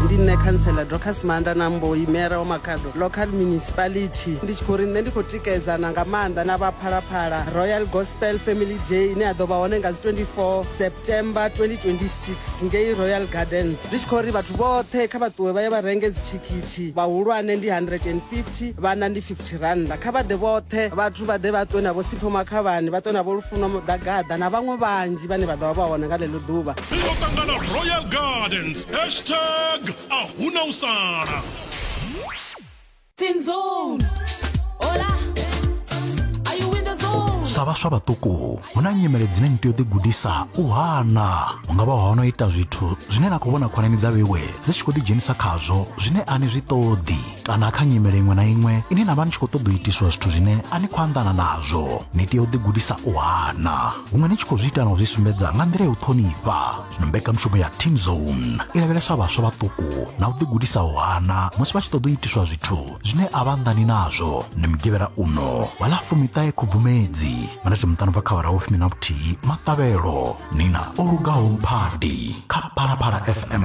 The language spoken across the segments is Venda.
ndi nṋe khantsela docas maanda na mboi mera wa makhado local municipality ndi tshi khou ri nṋe ndi khou tikedzana nga maanḓa na vhaphalaphala royal gospel family day ine ya ḓo vha hone nga dzi 24 september 2026 ngei royal gardens ndi tshi khou ri vhathu vhoṱhe kha vha ṱuwe vha ye vha renge dzithikhithi vhahulwane ndi 150 vhana ndi 50 thirannda kha vha ḓe vhoṱhe vhathu vha ḓe vha ṱwe na vho sipho makhavhani vha ṱwe na vho lufuno muḓagaḓa na vhaṅwe vhanzhi vhane vha ḓo vha vha hone nga ḽeḽo ḓuvha ri ḓo ṱangana royal gardens hashtag a huna u sala sa vhaswa vhaṱuku hu na nyimele dzine ni tea u ḓigudisa u hana hu nga vha hono ita zwithu zwine na khou vhona khonani dza vhewe dzi tshi khou ḓidzhenisa khazwo zwine a ni zwi ṱoḓi kana kha nyimele iṅwe na iṅwe ine na vha ni tshi khou ṱoḓa u itiswa zwithu zwine a ni khou anḓana nazwo ni tea u ḓigudisa u hana huṅwe ni tshi khou zwi ita na u zwi sumbedza nga nḓila ya u ṱhonifha zwino mbekamishumo ya team zone i lavhelesa vhaswa vhaṱuku na u ḓigudisa u hana musi vha tshi ṱoḓa u itiswa zwithu zwine a vha anḓani nazwo ni mugivhela uno wa ḽa fumiṱahe khubvumedzi manati muṱano bva kha wara wo fumi na vhuthihi maṱavhelo nina o lugaho mphadi kha phalaphala fm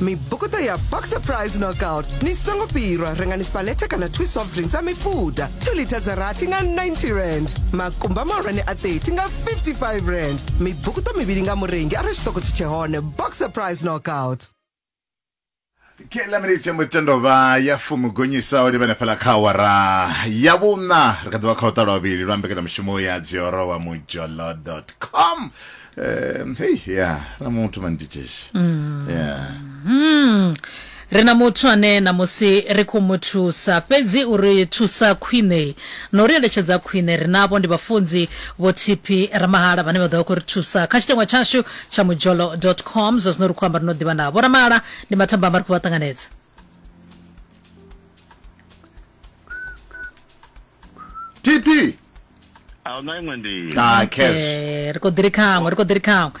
mibukuta ya boxer price knockout ni songo pirwa rengani spalete kana two soft drinks a mifuda 2 lita dza rathi nga 90 rand makumba mahulwane a 30 nga 55 rand mibukuta mivhili nga murengi arali tshiṱoko tshi tshe hone boxer price knockout kela minithe mutendovha ya fumi gonyisaho ndi vhenefhala kha awara ya vhuṋa ri kha ḓivha kha u ṱalwa vhili lwa mbekanyamushumo ya dziorowa mujolo com um, hei ya na muthu mani ticheshi ya Mm. ri na muthu ane na musi ri khou mu thusa fhedzi uri thusa khwine na uri eletshedza khwine ri navho ndi vhafunzi vho tp ramahala vhane vha ḓo vha khou ri thusa kha tshiteṅwa tshashu tsha mujolo com zwa zwino ri khou amba ri no ḓivha navho ramahala ndi mathamba amba ri khou vha ṱanganedza tp a huna iṅwe nḓila ah cash Eh, ri khou ḓi ri khaṅwe ri khou ḓi ri khaṅwe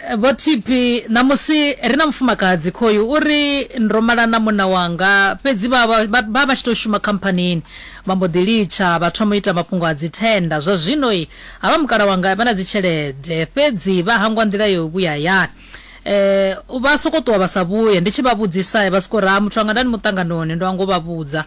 Eh, vho tipi ṋamusi ri na mufumakadzi khoyu u ri ndo mala na munna wanga fhedzi vha vha- vha vha vha tshi tou shuma khamphanini vha mbo ḓi litsha vha thoma u ita mafhungo a dzithenda zwa zwino i havha mukala wanga vha na dzitshelede fhedzi vha hangwa nḓila yo vhuya hayani eh vha soko ṱuwa vha sa vhuye ndi tshi vha vhudzisa vha soko ra muthu anga ndani muṱanganoni ndo anga u vha vhudza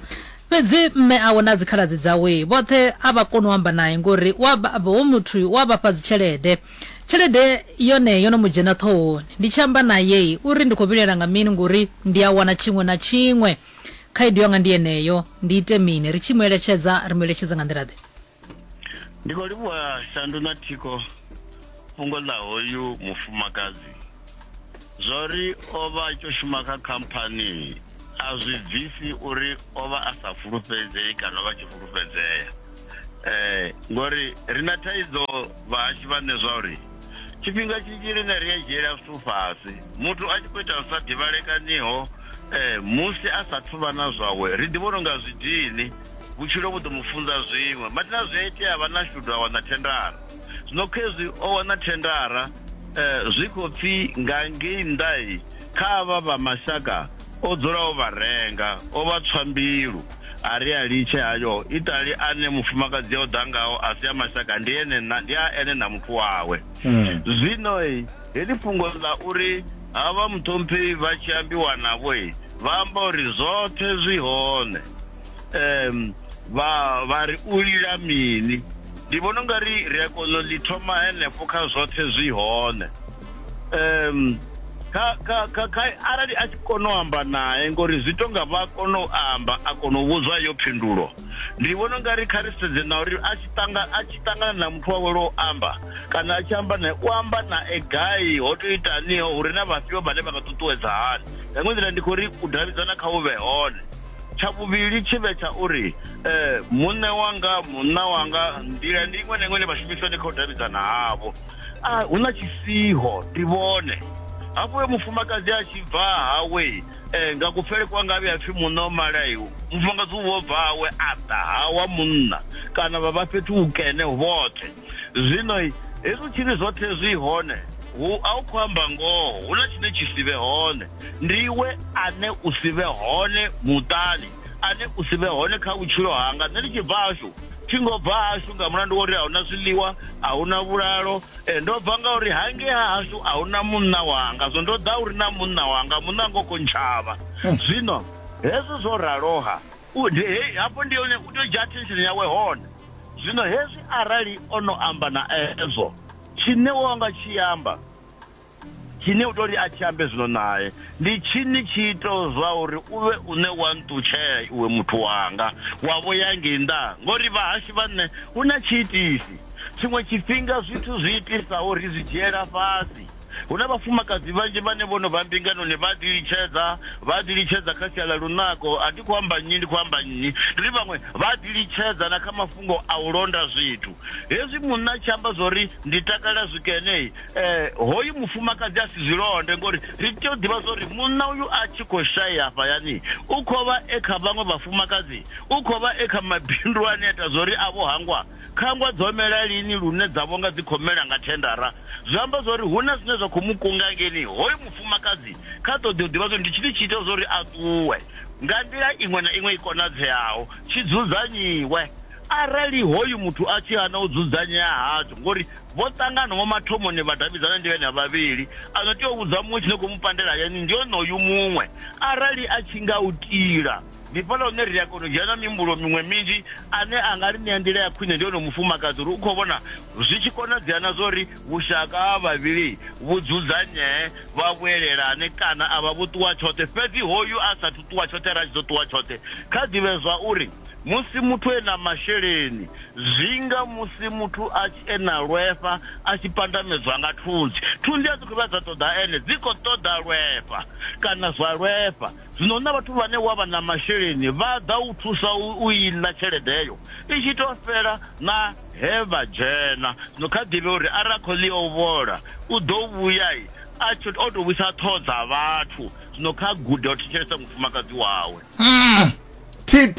Fhedzi mme awe na dzikhaladzi dzawe vhoṱhe a vha koni u amba nae ngori u a baba, hoyu muthu u a vha fha dzitshelede. Tshelede yone yo no mu dzhena ṱhohoni. Ndi tshi amba nae u ri, Ndi khou vhilaela nga mini ngori ndi a wana tshiṅwe na tshiṅwe. Khaedu yanga ndi yeneyo, ndi ite mini? Ri tshi mu eletshedza, ri mu eletshedza nga nḓila-ḓe? ndi khou livhuwa shandu na thiko fhungo ḽa hoyu mufumakadzi zwa uri o vha a tshi shuma kha khamphani a zwi bvisi uri o vha a sa fulufhedzei kana o vha tshi fulufhedzea um ngori ri na thaidzo vhahashi vhane zwa uri tshifhinga tshinzhi rine ri a dzhiela zwithu fhasi muthu a tshi khou ita zwi sa ḓivhalekaniho um musi a sathu vha na zwawe ri ḓi vhona unga zwi dini vhutshilo vhu ḓo mu funza zwiṅwe mathina zwi a itea vha na shudu a wana thendara zwino khezwi o wana thendara um zwi khou pfhi nga ngei nnḓai kha avha vha mashaka o dzula o vha renga o vha tswa mbilu a ri a litshe hayo itali ane mufumakadzi o ḓa ngaho a si a mashaka ndi ene ndi a ene na muthu wawe hmm. zwino heḽi fhungo ḽa uri havha muṱhompheyi vha tshi ambiwa navho vha amba uri zwoṱhe zwi hone um vha vha ri u lila mini ndi vhona ungari ri a kona u ḽi thoma henefho kha zwoṱhe zwi hone um kha kha kha kha arali a tshi kona u amba naye ngori zwi to nga vha kona u amba a kona u vhudzwa yo phindulo ndi vhona u nga ri kha ri sedze na uri a tshi tanga a tshi tangana na muthu wawe lwo amba kana a tshi amba naye u amba na e gai ho to itaniho uri na vhafhio vhane vha nga ṱuṱuwedza hani nga iṅwe nḓila ndi khou ri u davhidzana kha u vhe hone tsha vhuvhili tshi vhe tsha uri um muṋe wanga munna wanga nḓila ndi iṅwe na iṅwe ine vha shumisa ndi kha u davhidzana havho a hu na tshisiho ndi vhone hafho uyo mufumakadzi a tshi bva hawe um nga kupfele kwa ngavhe a pfi munna o malaiwo mufumakadzi uvho bva hawe a ḓa hawa munna kana vha vha fhethu hukene vhoṱhe zwino hezwi tshiri zwoṱhe zwi hone hu a u khou amba ngoho hu na tshine tshi si vhe hone ndiwe ane u si vhe hone muṱani ane u si vhe hone kha vhutshilo hanga nṋe ndi tshi bva hashu thi ngo bva hashu nga mulandu wa uri a huna zwiḽiwa a huna vhulalo eh, ndo bva nga uri hangei ha hashu a huna munna wanga zwo ndo ḓa uri na munna wanga munna ngo kontshavha hmm. zwino hezwo zwo raloha hafho ndi hone u tea u dzhia attention yawe hone zwino hezwi arali o no amba na ezwo tshine wo nga tshi amba tshine u tou ri a tshi ambe zwino nae ndi tshini tshi ito zwa uri u vhe une wa nṱutshela iwe muthu wanga wa vho ya ngei nnḓa ngori vhahashu vha nṋe hu na tshiitisi tshiṅwe tshifhinga zwithu zwi itisa uri zwi dzhiela fhasi hu na vhafumakadzi vhanzhi vhane vho no vha mbinganoni vha ḓi litshedza vha ḓi litshedza kha sia ḽa lunako a thi khou amba nnyi ndi khou amba nnyi ndi ri vhaṅwe vha ḓi litshedza na kha mafhungo a u londa zwithu hezwi munna tshi amba zwa uri ndi takalela zwikene eh hoyu mufumakadzi a si zwi londe ngori ri tea u ḓivha zwori munna uyu a tshi khou shaya hafhayani u khou vha e kha vhaṅwe vhafumakadzi u khou vha e kha mabindu ane ita zwori a vho hangwa khangwa dzo mela lini lune dza vhonga dzi khou mela nga thendara zwi amba zwori hu na zwine zwa khou mu kunga ngeni hoyu mufumakadzi kha ṱoḓi u ḓivha zwori ndi tshini tshi ita zwori a ṱuwe nga nḓila iṅwe na iṅwe i konadzeaho tshi dzudzanyiwe arali hoyu muthu a tshi hana u dzudzanyea hatsho ngori Vho ṱangana vho mathomoni vha davhidzana ndi vhenevha vhavhili. A no tea u vhudza muṅwe tshine khou mu pandela hayani ndi onoyu muṅwe. Arali a tshi nga u tila, ndi fhaḽa hune ri a kona u dzhena na mihumbulo miṅwe minzhi. Ane a nga ri ṋea nḓila ya khwine ndi onoyu mufumakadzi uri u khou vhona zwi tshi konadzea na zwa uri vhushaka ha vhavhili vhu dzudzanyee, vha vhuelelane kana a vha vho ṱuwa tshoṱhe. Fhedzi hoyu a sa athu ṱuwa tshoṱhe, arali a tshi ḓo ṱuwa tshoṱhe, kha ḓi vhe zwa uri musi muthu e na masheleni Zwinga musi muthu a tshi e na lwefha a tshi pandamedzwa nga thunzi. Thunzi a dzi khou vha dza ṱoḓa ene, dzi khou ṱoḓa lwefha kana zwa lwefha. Zwino hu na vhathu vhane wa vha na masheleni vha ḓa u thusa u i ḽa tshelede heyo i tshi tou fhela na he vha dzhena. Zwino kha ḓivhe uri arali a khou ḽi o vhola u ḓo vhuya a tshi o tou vhuisa ṱhoho dza vhathu. Zwino kha gude u thetshelesa mufumakadzi wawe. TP.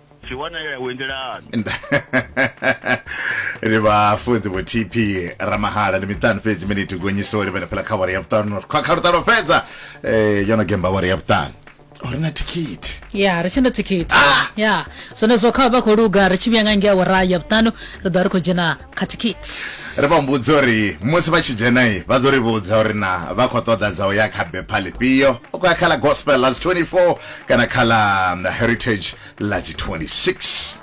Tshi wana ya wendelani. ri vhafunzi vho tp ramahala ndi miṱanu fhedzi miniti gonyiso ri vhele phela kha wari ya vhuṱanu khwa kha luṱalo fhedza um yo no gemba wari ya vhuṱanu uri na thikhithi ya ri tshi na thikhithi ya zwenezwo kha vha khou luga ri tshi vhuya nga ngei awara ya vhuṱanu ri ḓo vha ri khou dzhena khathikiti ri vha humbudza uri musi vha tshi dzhenai vha ḓo ri vhudza uri na vha khou ṱoḓa dza u ya kha bepha ḽifhio u khou ya kha ḽa gospel ḽa dzi 24 kana kha ḽa um, heritage ḽa dzi 26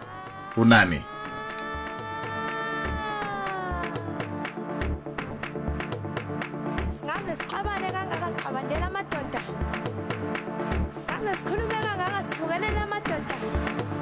u nani